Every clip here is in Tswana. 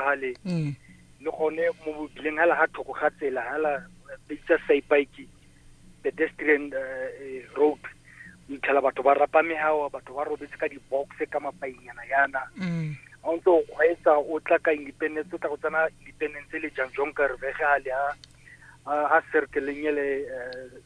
gale mm. le gone mo bobileng ga la ga thoko ga tsela ga la bitsa saipike pedestrian eh, eh, road o itlhela batho ba rapa megawa batho ba robetse ka di-boxe ka mapainyana yana ga mm. o ntse o kgweetsa o tla ka independence o tla go tsena independence le jang jong ka revegale a circleng ele eh,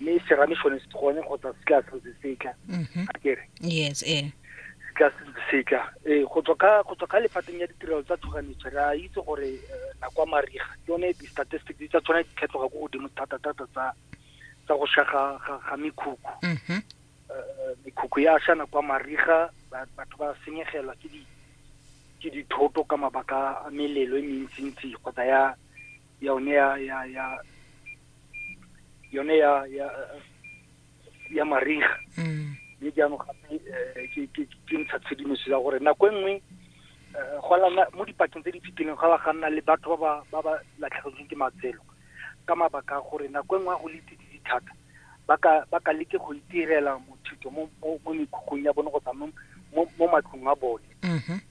mme serame sone se gone kgotsa se tla santse setla mhm. a kere yes eh se tla santse setla eh go tswa ka go tswa ka lefateng ya ditirelo tsa tshoganyetso ra itse gore eh, na kwa mariga yone di statistics di tsa tshwana di tlhatlhoga go godimo thata thata tsa tsa go sha ga ga mekhukhu mhm. eh, mekhukhu ya sha na kwa mariga batho ba senyegelwa ke di ke dithoto ka mabaka a melelo e mentsintsi kgotsa ya yone ya ya ya yone ya ya ya mariga mm. mme jaanong gape eh, ke ntsha tshedimoso ya gore nako e nngwe eh, go lana mo dipakeng tse di fitileng ga ba ga nna le batho ba ba latlhegetsweng ke matselo ka mabaka a gore nako e nngwe a go le tsididi thata ba ka leke go itirela mothuto mo mekhukhung ya bone kgotsa mo matlong a bone mm-hmm.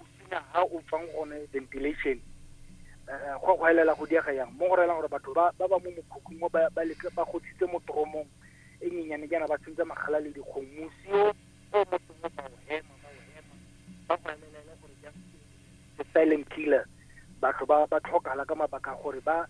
o senya ha o tswang gone ventilation eh, go go elela go diega yang mo go relang gore batho ba ba mo mokhukhung mo ba leke ba godisitse mo toromong e nyenyane jaana ba sentse magala le dikgong mosi o o motho mo ba o hema ba o hema ba go elela e le gore jang the silent killer batho ba ba tlhokala ka mabaka gore ba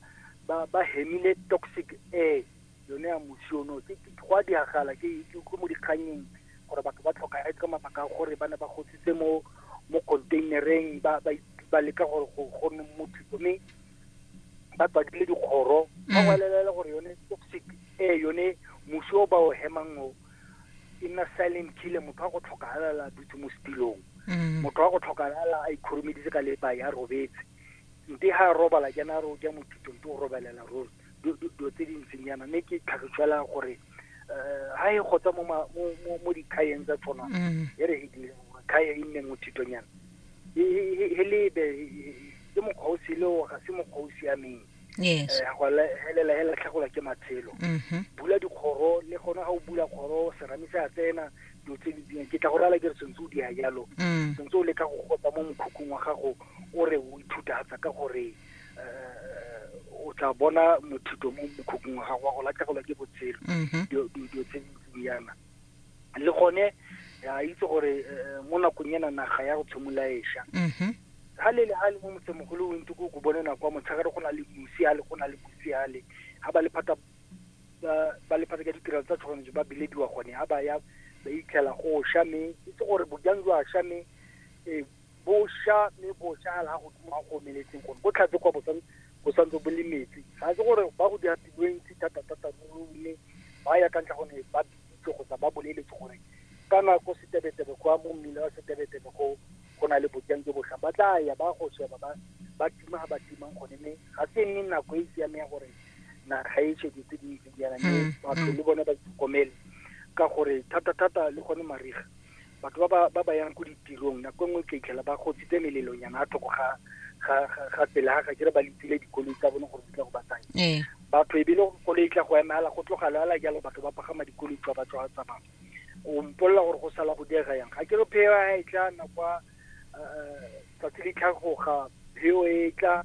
ba ba hemile toxic air yone ya mosiono ke go a diragala ke ko mo dikganyeng gore batho ba tlhokagetse ka mabaka a gore ba ne ba gotsitse mo mo containereng ba ba ba leka gore go go nne motho mme ba tswadile dikgoro ba Mm. gwalelela gore yone toxic e yone mosi o ba o hemang o e nna silent killer motho wa go tlhokahala dutse mo setilong Mm. motho wa go tlhokahala a ikhurumeditse ka lepa ya robetse nte ha a robala jana ro ja mothuto nte o robelela ruri dilo tse dintseng yana mme ke tlhagifela gore um ha e gotsa mo dikgayeng tsa tshwana mm. e re kgaya e nne mothitonyana he lebe ke mokgwa o sele o ga se mokgwa o siameng eh, helela he latlhegolwa ke matshelo mm-hmm. bula dikgoro le gona ga o bula kgoro serame se a tsena dilo tse di dingwe ke tla go rala ke re sentse o di ya jalo mm. sentse o leka go gotsa mo mokhukhung wa gago o re o ithutatsa ka gore o tla bona mothuto mo mokhukhung wa gago wa go latlhegelwa ke botshelo mm-hmm. dilo tse di yana le gone a itse gore eh, mo nakong ena naga ya go tshimolaesha ga mm-hmm. le le ga le mo motsemogolo o ntse ko ko bone nako ya motshegare go na le mosiale go na le mosiale ga ba lephata ba lephata ka ditirelo tsa tshoganyetso ba bilediwa gone ga ba ya ba itlhela go sha mme itse gore bojang jwa sha mme eh, Bosha mme bosha la godimo a go omeletseng gone bo tlhatse kwa bosan bo santse bo le metsi ga se gore ba go dira tiro e ntsi thata-thata ruri mme ba ya ka ntlha gone ba bitsitse kgotsa ba boleletse gore ka nako setebetebe kwa mo mmila wa setebetebe go go na le bojang jo botlhang ba tla ya ba go sheba ba ba tima ga ba timang gone mme ga se nne nako e e siameng ya gore naga e shwe dilo tse di ntseng jaana mme batho le bone ba itlhokomele ka gore thata-thata le gone mariga batho ba ba ba ba yang ko ditirong nako nngwe ka itlhela ba gotsitse melelonyana a thoko ga ga ga- ga tsela ga kere ba letsile dikoloi tsa bone gore di tla go ba tsaya ee batho e bile koloi e tla go emela go tlogala ala jalo batho ba pagama dikoloi tswa ba tswa tsamaya o mpolelela gore go sala go diega yang ga ke re pheo ya e tla na kwa eh, tsatsi le tlhagoga pheo e tla